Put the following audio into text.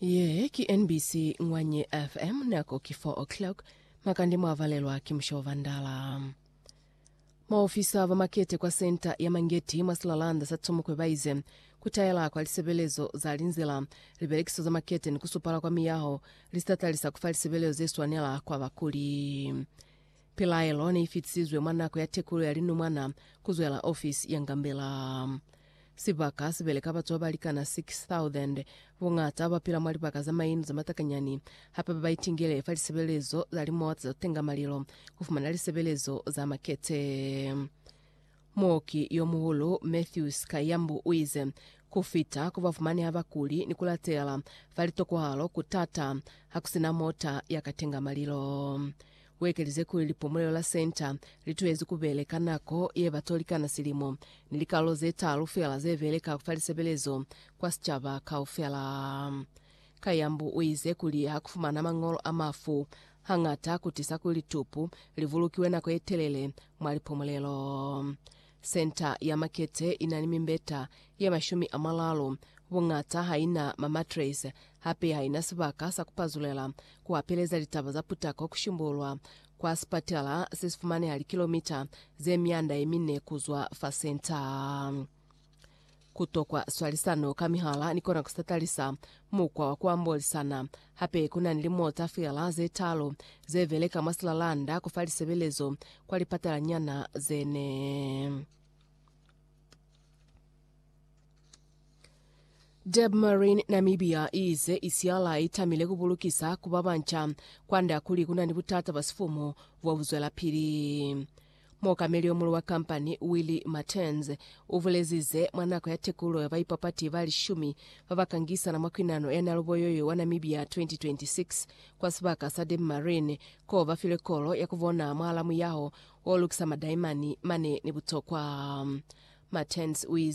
Ye ki NBC Ngwanye FM nako ki 4 o'clock makande mwavalelwa ki musho wa vandala. Maofisa ba makete kwa senta ya Mangeti mwa silalanda sa Tsumukwe baize kutaela kwa lisebelezo za linzila, libelekiso za makete ni kusupala kwa miyaho lisitatalisa kufa lisebelezo zeswanela kwa bakuli. Pilaelo neifitisizwe mwa nako ya tekulo ya linumwana kuzwela ofisi ya Ngambela. Sibaka sibeleka batu babalikana 6,000. Buñata bapila mwa libaka za mainu za matakanyani, hape babaitingele fa lisebelezo za limota za tenga malilo kufumana lisebelezo za makete. Muoki yomuhulu Matthews Kayambu uize, Kufita ku bafumaneha bakuli ni kulatela fa litokohalo kutata hakusina mota yakatenga malilo. U ekelize kuli lipomolelo la Centre li tuhezi ku beleka nako ye ba tolikana silimo, ni likalolo ze talu fela ze beleka fa lisebelezo kwa sicaba kaufela. Kayambu u ize kuli ha ku fumana mañolo a mafu, hañata ku tisa kuli litupu li bulukiwe nako ye telele mwa lipomolelo. Senta ya makete i na ni mimbeta ye mashumi a maralu. Buñata ha i na mamatres, hape ha i na sibaka sa ku pazulela, ku hapeleza litaba za putako ku shimbululwa, kwa sipatela se si fumaneha likilomita ze mianda ye mine ku zwa fa senta. Ku tokwa swalisano ka mihala ni kona ku sa talisa mukwa wa ku ambolisana. Hape ku na ni limuo za fela ze talu ze beleka mwa silalanda ku fa lisebelezo kwa lipatalanyana ze ne. Debmarine Namibia i ize i siala i tamile ku bulukisa ku ba banca kwand'a kuli ku na ni butata bwa sifumu bo bu zwelapili. Muokameli yo mulu wa kampani, Willy Martens, u bulezi ze mwa nako ya tekululo ya baipapati ba lishumi ba ba ka ngisana mwa kwinano ya Naluboyoyo wa Namibia 2026 kwa sibaka sa Dam Marine koo ba filwe kolo ya ku bona mwahala muyaho wo lukisa madaimani mane ni butokwa. Martens u ize,